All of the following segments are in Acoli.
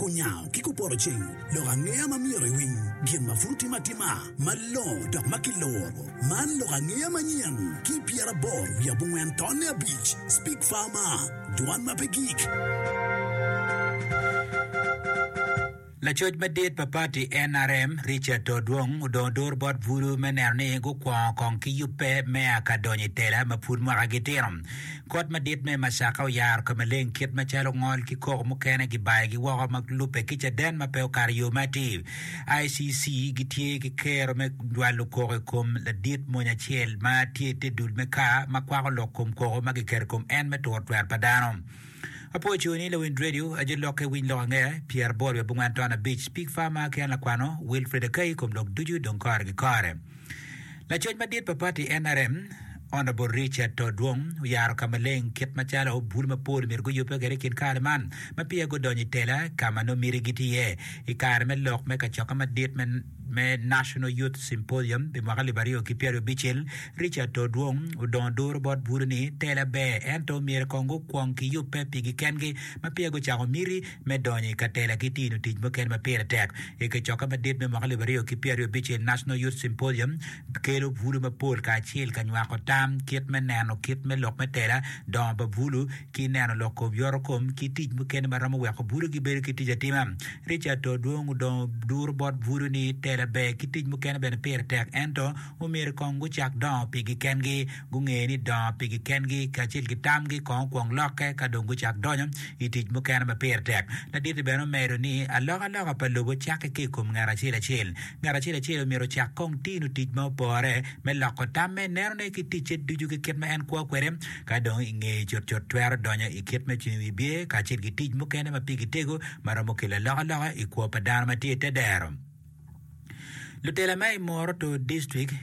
Kunyango ki kupoto ceng, lok angeya ma myero iwiny, gin ma pud otime atima malongo dok ma kiloro. Man lok angeya manyen ki pyeraboro wiye abongwen tonne abic, Speak Farmer, Dwan ma pe gik. Lacoc madit pa pati nrm, Richard Todwong odongo duru bot bulu me neno ni gukwongo kong ki yubbe mea ka donyo i tela ma pud mwakagi tino. Kot madit me Macaka oyaro ka maleng kit macalo ngol ki koko mukene gibayogi woko ma lubbe ki caden ma pe okato yo ma atir. ICC gitye ki kero me jwalo koko i kom ladit mony acel ma tye i te dul me kaa ma kwako lok kom koko ma giketo i kom en me turo twer pa dano. Apo co ni lawind radio, ajo lokke, winy lok ange, pyeraboro wiye bongwen ton abic, pig farmer ki an lakwano, Wilfred Akai, kom lok ducu dong kore ki kore. Lacoc madit pa pati NRM, Honourable Richard To Dwong oyaro ka maleng kit macalo bul mapol myero guyubbe kwede i kin kare man ma peya gudonyo i tela ka ma nongo miti giti iye i kare me lok me kacokke madit me National Youth Symposium pi mwaka alip aryo ki pyeraryo abicel. Richard To Dwong odongo duru bot bulu ni tela ber ento myero kong gukwong giyubbe pigi kengi ma peya gucako miti. me donyo i katela ki tino tic mukene ma pire tek. I kacokke madit me mwaka alip aryo ki pyeraryo abicel, National Youth Symposium kelo bulu mapol kacel ka nywako tam kit me neno kit me lok me tela, dongo pa bulu, ki neno lok kom yorokom ki tic mukene ma romo weko bulu gibedo ki tic atima. Richard to dwong odongo duru bot bulu ni tela ber ki tic mukene bene pire tek ento, omyero kong gucak dongo pigi kengi, gunge ni dongo pigi kengi kacel ki tamgi kong okwong lokke ka dong gucak donyo i tic mukene ma pire tek. Ladit-ti bene omedo ni, Alokaloka pa lobo cakke ki i kom ngat acel acel. Ngat acel acel omyero ocak kong tino tic ma opore me loko tamme, nenone ki ticce ducu ki kit ma en kwo kwede. Ka dong i ngeye cutcut twero donyo i kit me cung i wi bye kacel ki tic mukene ma pigi tego ma romo kelo alokaloka i kwo pa dano ma tye i te dero. Lutela ma i Moroto District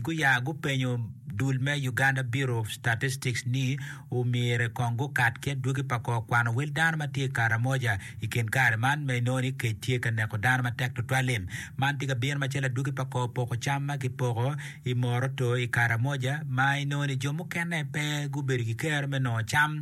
guya gupenyo dul me Uganda Bureau of Statistics ni omyero kong gukat ki adwogi pa kor kwano wel dano ma tye i Karamoja i kin kare man ma inongo ni kec tye ka neko dano matek tutwal-li. Man tye ka bino macalo adwogi pa kor poko cam ma kipoko i Moroto i Karamoja ma inongo ni jo mukene pe gubedo ki kero me nongo cam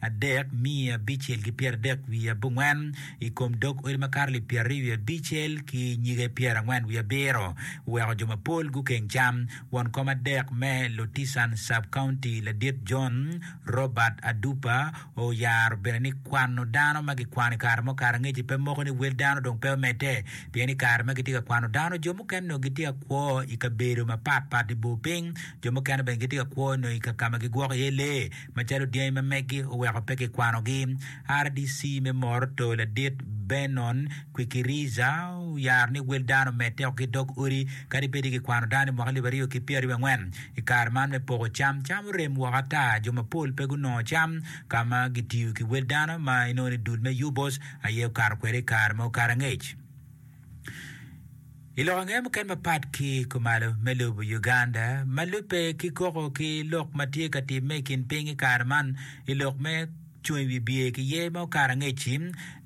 adek miye abicel ki pyeradek wiye abongwen, i kom dog odi makato lib pyeraryo wiye abicel ki nyige pyerangwen wiye abiro, oweko jo mapol gukeng cam. Won kom adek me Lotisan Sub-County ladit John Robert Adupa oyaro bene ni kwano dano ma gikwano i kare mo kare angeci pe moko ni wel dano dong pe omedde pien i kare ma gitye ka kwano dano jo mukene onongo gitye ka kwo i kabedo mapatpat i bor piny, jo mukene bene gitye ka kwo onongo i ka ma gigwoko iye lee. Macalo dyangi ma meggi oweko pe kikwanogi, RDC me Moroto ladit Benon Kwikiriza oyaro ni wel dano omedde woko ki dog odi kadi bed ni kikwano dano i mwaka alip aryo ki pyeraryo angwen. I kare man me poko cam, cam orem woko ata, jo mapol pe gunongo cam ka ma gitiyo ki wel dano ma inongo ni dul me UBOS aye okato kwede i kare ma okato angec. I lok ange muken mapat ki i kumalo me lobo Uganda ma lubbe ki koko ki lok ma tye ka timme i kin piny i kare man i lok me Cung i wi Biye ki Ye ma Okato Angec-ci,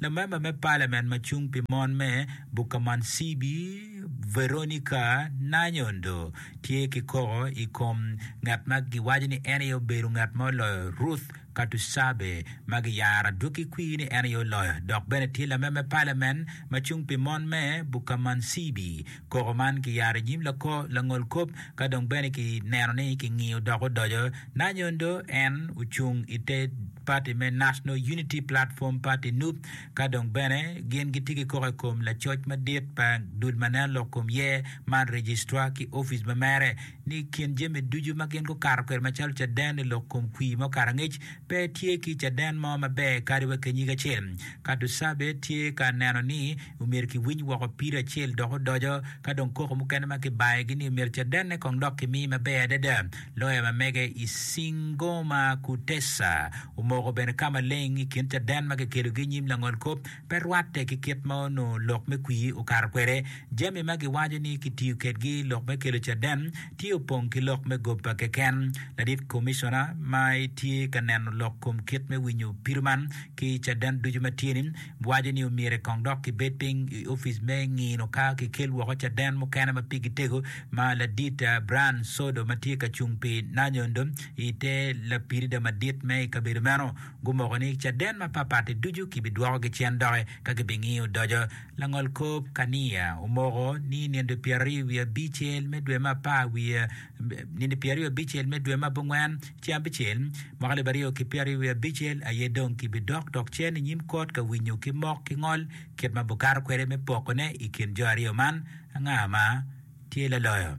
Lamemba me Palament ma Cung pi Mon me Bukamansibbi, Veronica Nanyondo, tye ki koko i kom ngat ma giwaco ni en aye obedo ngat ma oloyo Ruth Katusabe, ma giyaro adwogi kwir ni en aye oloyo, dok bene tye lamer me palamen ma cung pi mon me Bukamansibi. Koko man kiyaro inyim lako langol kop ka dong bene ki neno ni ki ngiyo dok odoco na nyondo en ocung ite party me National Unity Platform Party, nup, ka dong bene gin gitye ki koko ikom lacoc madit pa dul ma nen lok kom yer man Registrar ki office ma mere. ni i kin jami ducu ma gin gukato kwede macalo caden i lok kom kwir mo karangec, pe tye ki caden mo maber kadi wa ki nyig acel. Ka Dusabe tye ka neno ni omyero kiwiny woko pire acel dok odoco, ka dong koko mukene ma kibayogi ni omyero cadenne kong dok kimi maber adada. Loya ma mege i Singoma Kutesa omoko bene ka maleng i kin caden ma kikelogi i nyim langolkop, pe rwatte ki kit ma onongo lok me kwir okato kwede. Jami ma giwaco ni kitiyo kedgi i lok me kelo caden tye opong ki lok me goba keken. Ladit Komicona ma tye ka neno lok kom kit me winyo pido man ki caden ducu ma tye-ni waco ni omyero kong dok kibed piny i opic me ngino ka kikel woko caden mukene ma pigi tego ma ladit Brian Sodo ma tye ka cung pi Nanyondo i te lapirida madit me i kabedo meno Gumoko ni caden mapatpat-ti ducu kibidwokogi cen doki ka gibingiyo odoco. Langol kop Kania omoko ni nino pyeraryo wiye abicel me dwe me apar wiye nino pyeraryo abicel me dwe me abongwen ceng abicel mwaka alip aryo ki pyeraryo wiye abicel aye dong kibidok dok cen inyim kot ka winyo ki mok ki ngol kit ma bukato kwede me pokone ikin jo aryo man anga ma tye laloyo.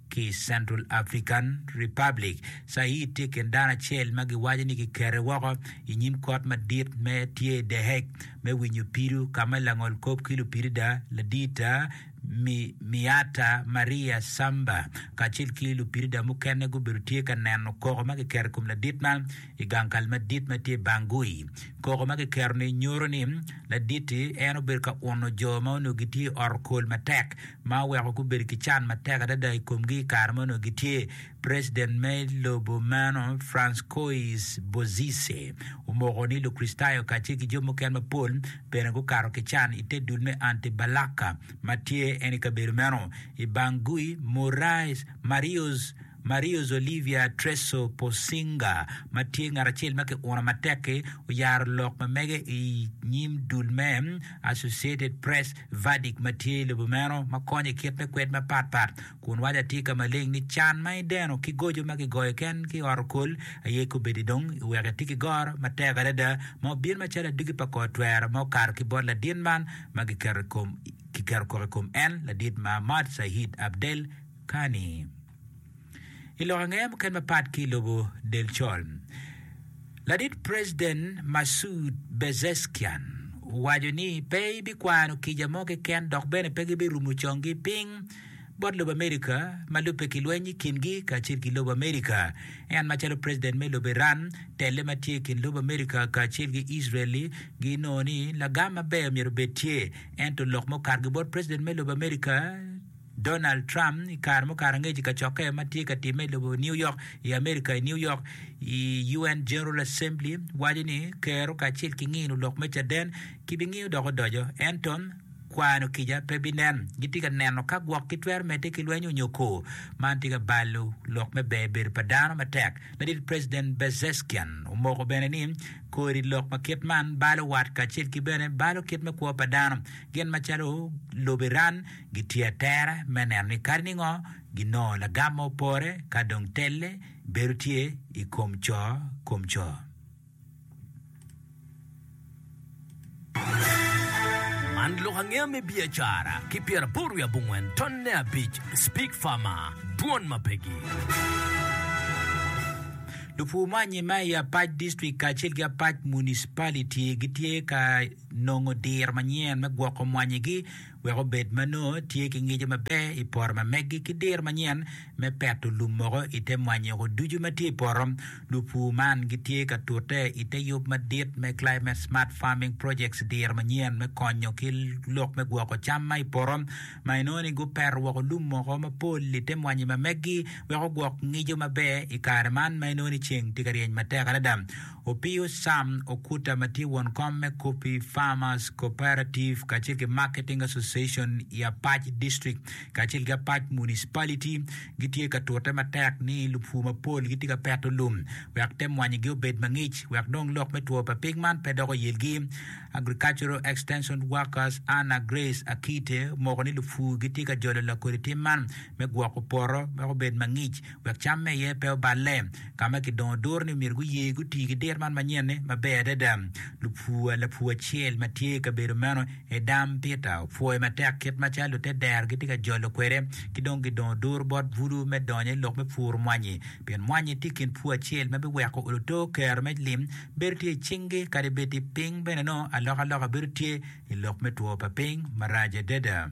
Ki i Central African Republic, Said tye i kin dano acel ma giwaco ni kikete woko i nyim Kot Madit ma tye i The Hague me winyo pido ka ma langol kop ki lupidida Ladita Miata Maria Samba kacel ki lupidida mukene gubedo tye ka neno koko ma kiketo i kom ladit man i gang kal madit ma tye i Bangui. Koko ma kiketo-ni nyuto ni ladit-ti en obedo ka uno jo ma onongo gitye i ot okol matek ma oweko gubedo ki can matek adada i komgi i kare ma onongo gitye. President me lobo meno, Francois Bozizé, omoko ni Lukricitayo kacel ki jo mukene mapol bene gukato ki can i te dul me anti-Balaka ma tye en i kabedo meno. I Bangui, Moraes, Marius, Mario Zolivia Treso Posinga ma tye ngat acel ma kiuno matek-ki oyaro lok ma mege i nyim dul me Associated Press verdict ma tye i lobo meno ma konyo i kit me kwed mapat pat kun waco atika maleng ni can ma ideno ki goco ma kigoyo ken ki ot okol aye kobedi dong iweko iti ki goro matek adada ma obin macalo adwogi pa kor twero ma okato ki bot ladit man ma giketo koko i kom en ladit ma Ahmad Syed Abdel Kani. I lok angeye mukene mapat ki i lobo Delcol, ladit President Massoud Pezeshkian owaco ni pe ibikwano kica mo keken dok bene pe gibirumo conggi piny bot lobo America ma lubbe ki lweny i kingi kacel ki lobo America. En macalo President me lobo Iran, telle ma tye i kin lobo America kacel ki Israel ginongo ni lagam maber myero obed tye ento lok ma okato ki bot President me lobo America, Donald Trump i kare mukato angec i kacokke ma tye ka timme i lobo New York i Amerika i New York i UN General Assembly waco ni Kero kacel ki ngino lok me caden kibingiyo dok odoco ento kwano kica pe binen. Gitye ka neno ka gwok gitwero medde ki lwenyo nyo ko. Man tye ka balo lok me ber bedo pa dano matek. Ladit President Bezeskian omoko bene ni kodi lok ma kit man balo wat kacel ki bene balo kit me kwo pa dano gin macalo lobo Iran gitye atere me neno ni kadi ni ngo ginongo lagam ma opore ka dong telle bedo tye i kom co kom co. Man lok angeya me biacara ki pyeraboro wiye abongwen tonne abic Speak Farmer, Dwon ma Pegi. Lupur me anyima i apac district kacel ki apac municipality gitye ka nongo diro manyen me gwoko mwanyigi. wek obed ma nongo tye ki ngico maber i poto ma megi ki diro manyen me peto lum moko i te mwanyoko ducu ma tye i poto. Lupur man gitye ka tute i te yub madit me Climate Smart Farming Projects diro manyen me konyo ki lok me gwoko cam ma i poto ma inongo ni gupeto woko lum moko mapol i te mwanyi ma megi wek ogwok ngico maber i kare man ma inongo ni ceng tye ka ryeny matek adada. Opiyo Sam Okuta ma tye won kom me Coffee Farmers Cooperative kacel ki Marketing Association i Apac District kacel ki Apac Municipality gitye ka tute matek ni lupur mapol gitye ka peto lum wek te mwanyigi obed mangic wek dong lok me two pa pig man pe dok oyelgi. Agricultural Extension Workers Anna Grace Akite omoko ni lupur gitye ka jolo lakodi tim man me gwoko poto wek obed mangic wek camme iye pe oballe. Ka ma kidongo duru ni myero guye guti ki dir man manyen-ni maber adada. Lupur lapur acel ma tye i kabedo meno aye dam Peter. Opwoyo matek kit macalo lute dero gitye ka jolo kwede ki dong gidongo duru bot bulu me donyo i lok me puro mwanyi, pien mwanyi tye i kin pur acel ma biweko luto kero me lim bedo tye i cingi kadi bed ti piny bene nongo alokaloka bedo tye i lok me two pa piny marac adada.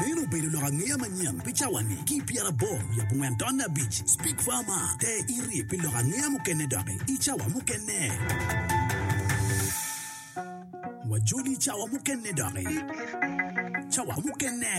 Meno obedo lok angeya manyen pi cawa-ni. Ki i pyerabor wiye abongwen taun abic, Speak Farmer, te iri pi lok angeya mukene doki i cawa mukene. Wajoli i cawa mukene doki. Cawa mukene.